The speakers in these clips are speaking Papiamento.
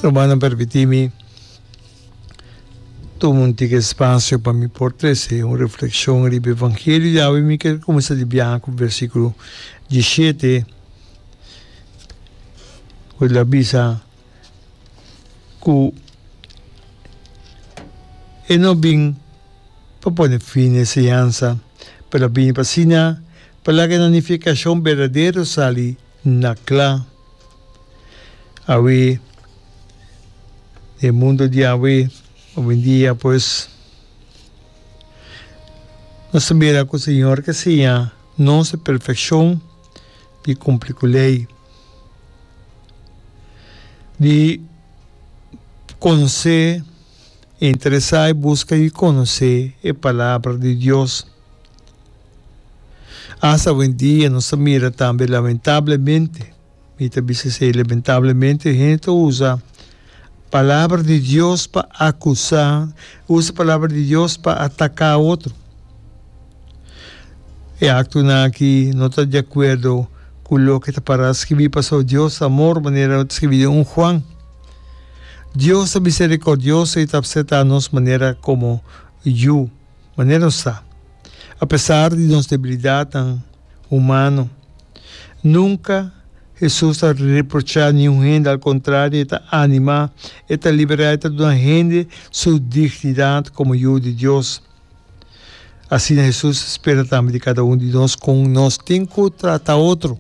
Rumannan permití mi tuma un tika spasio pa mi por trese un reflekshon riba e vangelio di awe. Mi kier kuminsá di biaha ku vèrsikulo diesiete ku ta bisa ku e no bin pa pone fin na e enseñansa pero a bini pa asina pa laga e nanifikashon berdadero sali Na cla. Awe e mundo di awe owendia pues nos ta mira cu Señor ta siña nos e perfeccion di cumpli cu ley, di conse interesá e buska i konosé e Palabra di Dios. Asta awendia nos ta mira tambe, lamentablemente, mi ta bisa esei, lamentablemente, hende ta usa Palabra di Dios pa akusá, usa Palabra di Dios pa ataká otro. E aktonan akí no ta di akuerdo ku loke ta pará skirbí, pasó Dios ta amor, manera ta skirbí den un Juan. Dios ta miserikòrdioso i ta apseta nos manera komo yu, manera nos ta. Apesar di nos debilidatnan humano, nunka Hesus ta reprochá niun hende, al kontrario e ta animá, e ta liberá, e ta duna hende su dignidat komo yu di Dios. Asina Hesus spera tambe di kada un di nos kon nos tin ku trata otro.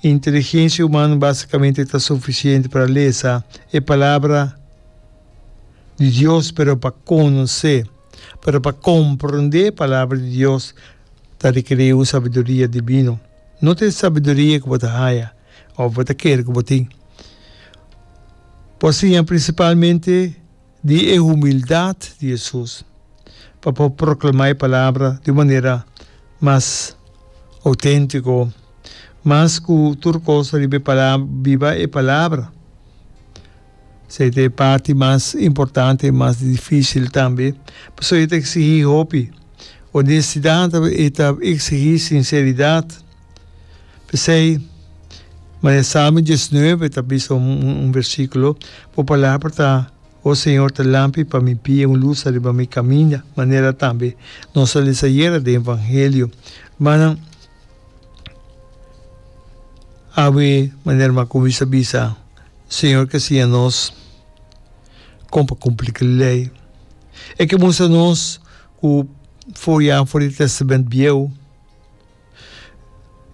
E inteligensia humano basicamente ta suficiente pa lesa e palabra di Dios, pero pa conoce, pero pa comprende e palabra di Dios ta requiri un sabiduria divino. No ta e sabiduria cu bo ta haya of bo ta kere cu bo tin. Bo a siña principalmente. di e humildat di Jesus pa por proclama e palabra di un manera mas autentico, mas cu tur cos riba e palabra, biba e palabra. Esey ta e parti mas importante y mas dificil tambe, pasobra e ta exigi hopi. Honestidad ta exigi sinceridad. P'esei, maña Salmo diesnuebe ta bisa un versíkulo, Bo palabra ta, O Señor, ta lampi pa mi pia, un lus riba mi kaminda. Manera tambe nos a lesa ayera den Evangelio, rumannan awe manera ruman Cummings a bisa, Señor ke siña nos kon pa kumpli ku lei. E ke mustra nos ku for ya for di Tèstamènt Bieu,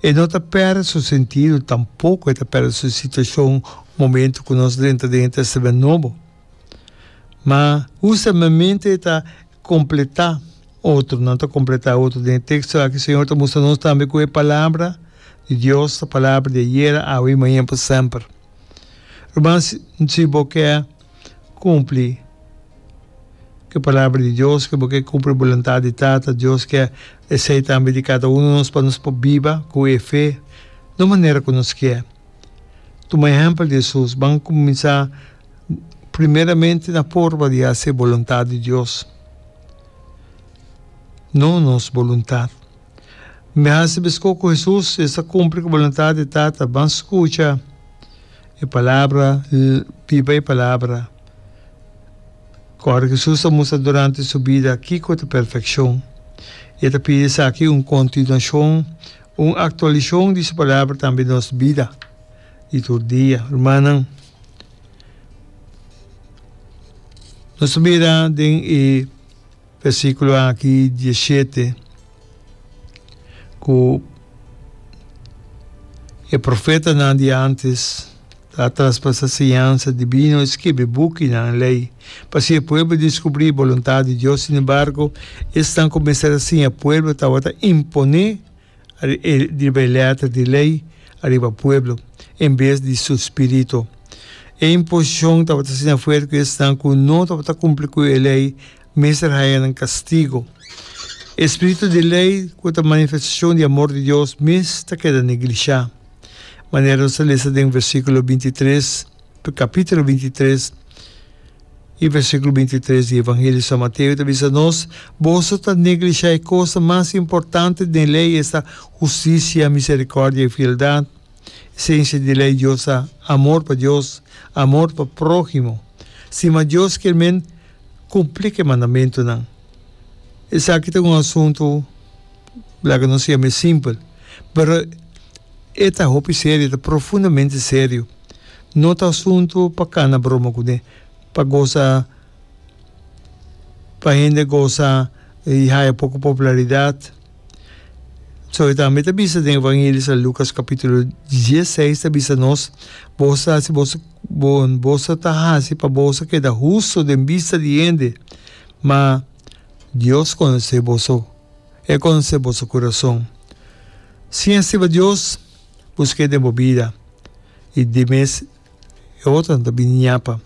E no ta perde su sentido, tampoco e ta perde su situacion momento cu nos drenta den e Testament Nobo. Ma hustemente e ta completa otronan, ta completa e otro. Den e texto aki Señor ta mustra nos tambe cu e Palabra di Dios ta Palabra di ayera, awe y mañan pa semper. Ruman, si bo ke cumpli e palabra di Dios, cu bo ke cumpli e boluntad di Tata Dios ke esey tambe di cada uno di nos pa nos por biba cu e fe no manera cu nos kier. Tuma ehempel di Hesus, ban cuminsa primeramente na forma di haci e boluntad di Dios, no nos boluntad. Mi hasi besko ku Hesus e ta kumpli ku boluntat di Tata. Ban skucha e palabra, biba e palabra. Ku ora ku Hesus a mustra durante su bida kiko ta perfekshon, e ta pidi esaki un kontinuashon, un aktualishon di su palabra tambe nos bida di tur dia. Rumannan, nos ta mira den e. Versiculo aki diecisiete cu e profetanan di antes ta a traspasa siñansa divino e skibi bukinan, ley, pa siña pueblo discubri e boluntad di Dios. Sin embargo, esnan cuminsa a siña pueblo tawata impone. riba e letra di lei ariba pueblo en bes di su spirito. E imposicion tabata asina fuerte cu esnan cu no tabata cumpli cu e lei mester haña nan castigo. E spirito di lei cu ta manifestacion di amor di Dios mes ta keda negligia. Manera nos ta lesa den versiculo bintitres, capitulo bintitres, E versíkulo binti tres di Evangelio di San Mateo ta bisa nos, Boso ta neglishá e kosnan mas importante den Lei, esta, hustisia, miserikòrdia i fieldat. Esensia di Lei Dios ta amor pa Dios, amor pa próhimo. Stima Dios kier men kumplí ku e mandamentunan. Esaki ta un asuntu. Bler cu nos yama e simpel, pero e ta hopi serio, e ta profundamente serio. No ta asunto pa cana broma cu ne, pa goza, pa hende goza y haya poco popularidad. So e tambe ta bisa den Evangelio sa Lucas capitulo dieseis ta bisa nos, Boso ta haci boso, boso ta haci pa boso keda husto den bista di hende, ma Dios conoce boso. E conse boso curason. Sin e stiba Dios, busqu'é den bo bida, y di mes e otronan ta bini ñapa.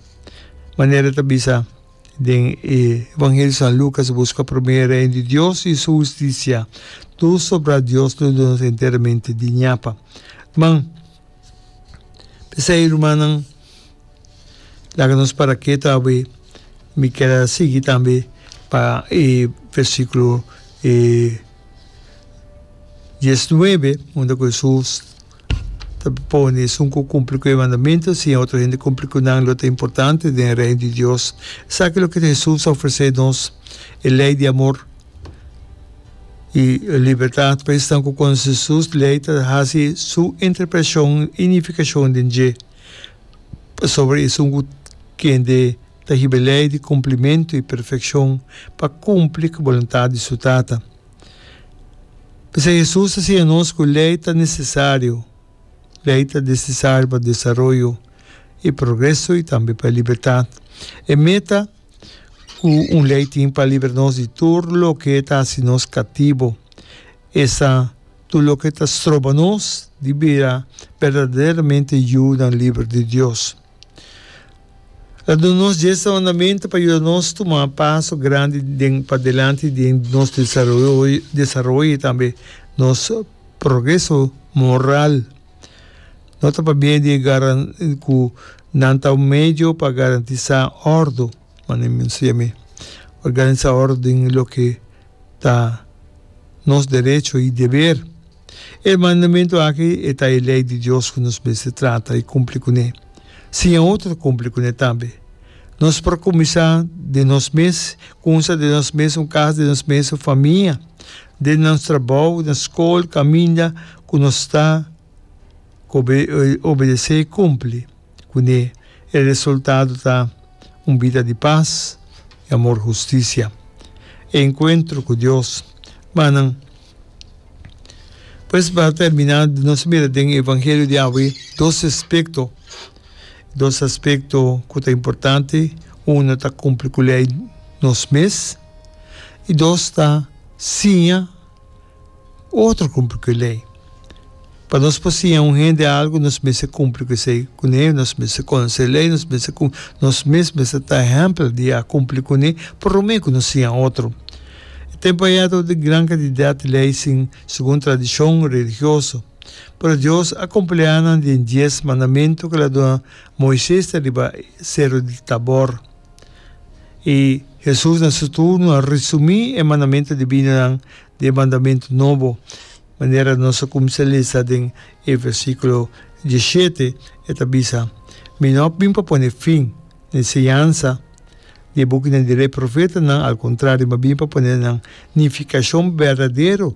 Manera ta bisa den e Evangelio di San Lucas, Busca prome e reino di Dios y su husticia, tur sobra Dios lo duna nos enteramente di ñapa. Man, P'esei, rumannan, laga nos para ketu awe. Mi ker a sigui tambe pa e versikulo dies nuebe, unda ku Hesus ta pone esun ku kumpli ku e mandamentu, si e otro hende kumpli ku nan, lo ta importante den Reino di Dios. Esaki loke Hesus ta ofresé nos, e lei di amor. I libertat pa esnan ku konsi sus lei ta hasi su interpretashon i nifikashon den dje. Pasobra esun ku kende ta hiba lei di kumplimentu i perfekshon pa kumpli ku boluntat di su Tata. P'esei Hesus ta siña nos ku lei ta nesesario. Lei ta nesesario pa desaroyo i progreso i tambe pa libertat. E meta. Ku un lei tin pa libra nos di tur loke ta hasi nos katibo. Esa tur loke ta stroba nos di bira berdaderamente yunan liber di Dios. El a duna nos djesta mandamentu pa yuda nos tuma paso grandi den padelanti den nos desaroyo desaroyo i tambe nos progreso moral. No ta pabia di e garan ku nan ta un medio pa garantisá òrdu, manera mi mester yam'é. Organisá òrdu den loke ta nos derecho i deber. E mandamentu aki e ta e lei di Dios ku nos mester trata i kumpli kuné. Siña otro ta kumpli kuné tambe. Nos por kuminsá den nos mes, kunsa den nos mes, un kas den nos mes, un famia, den nos trabou, na skol, kaminda ku nos ta obedesé i kumpli kuné. E resultado ta un bida di pas i amor hustisia, e enkuentro ku Dios. Manan. Pues pa termina nos a mira den e evangelio di awe dos aspekto dos aspekto ku ta importante uno ta kumpli ku lei nos mes i dos ta siña otro kumpli ku e lei. Pa nos por siña un hende algu nos mes a kumpli ku esei kuné, nos mes a konosé lei, nos mes a kumpli, nos mes mes a ta ehèmpel di a kumpli kuné pa rumen ku nos siña otro. E tempu a yega ta un gran kantidat di lei sin segun tradishon religioso. Pero Dios a kompleá nan den dies mandamentu ku el a duna Moises ta riba Seru di Tabor. I Hesus na su turno a resumí e mandamentu divinonan den e mandamentu nobo. Manera nos a cuminsa lesa den e versiculo diesshete, e ta bisa, Mi no a bin pa pone fin na enseñansa ni e bukinan di ley profetanan, al contrario, mi a bin pa pone nan nificacion berdadero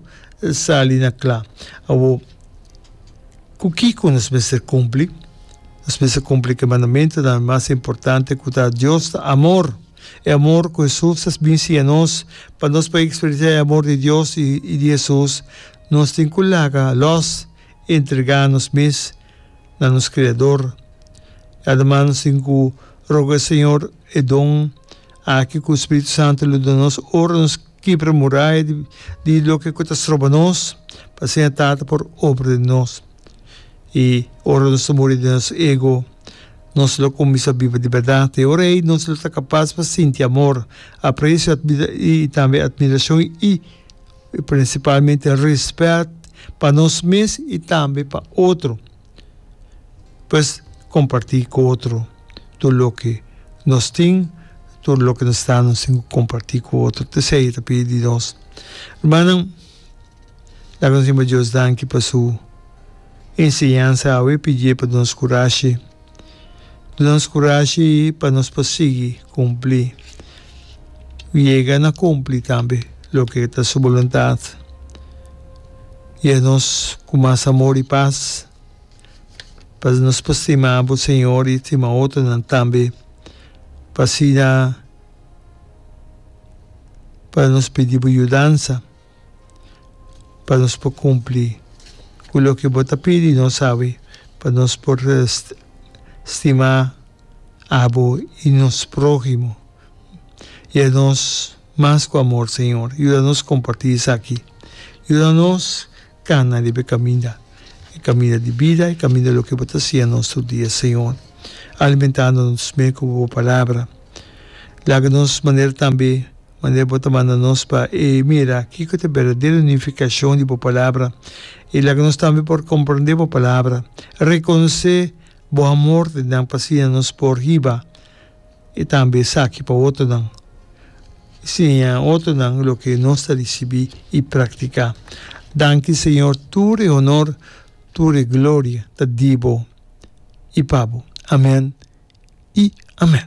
sali na cla. Awor, cu kico nos mester cumpli? Nos mester cumpli cu e mandamentonan mas importante, cu ta, Dios ta amor. E amor cu Hesus a bin siña nos, pa nos por experiencia e amor di Dios y di Hesus, nos tin cu laga los y entrega nos mes na nos Creador. Además nos tin cu roga e Señor e don aki cu Spiritu Santo lo duna nos ora nos kibra muraya di loke cu ta stroba nos, p'asina Tata por obra den nos. i ora nos ta muri den nos ego nos lo kuminsá biba di bèrdat. E ora ei nos lo ta kapas pa sinti amor, apresio i tambe atmirashon i prinsipalmente rèspèt pa nos mes i tambe pa otro. Pues kompartí ku otro tur loke nos tin, tur loke nos sta nos tin ku kompartí ku otro, esei ta pidi di nos. Rumannan. La nos hiba Dios danki pa su enseñansa awe pidié pa duna nos kurashi. Duna nos kurashi pa nos por sigui kumplí i yega na kumplí tambe loke ta su boluntat. Yeh nos ku mas amor i pas pa nos por stima bo Señor i stima otronan tambe pa asina pa nos pidi bo yudansa. pa nos por cumpli cu loke bo ta pidi nos awe pa nos por stima abo y nos prohimo y a nos mas cu amor Señor yuda nos comparti esaki yuda nos cana riba e caminda e caminda di bida e caminda loke bo ta siña nos tur dia Señor alimentando nos cu bo palabra laga nos manera tambe Manera bo ta manda nos pa e mira kiko ta e berdadero nifikashon di bo palabra i laga nos tambe por komprondé bo palabra, rekonosé bo amor den nan pa siña nos por hiba i tambe esaki pa otonan. Siña otonan loke nos ta risibí i praktiká. Danki Señor, tur e honor, tur e gloria ta di bo i pa bo. Amèn i amèn.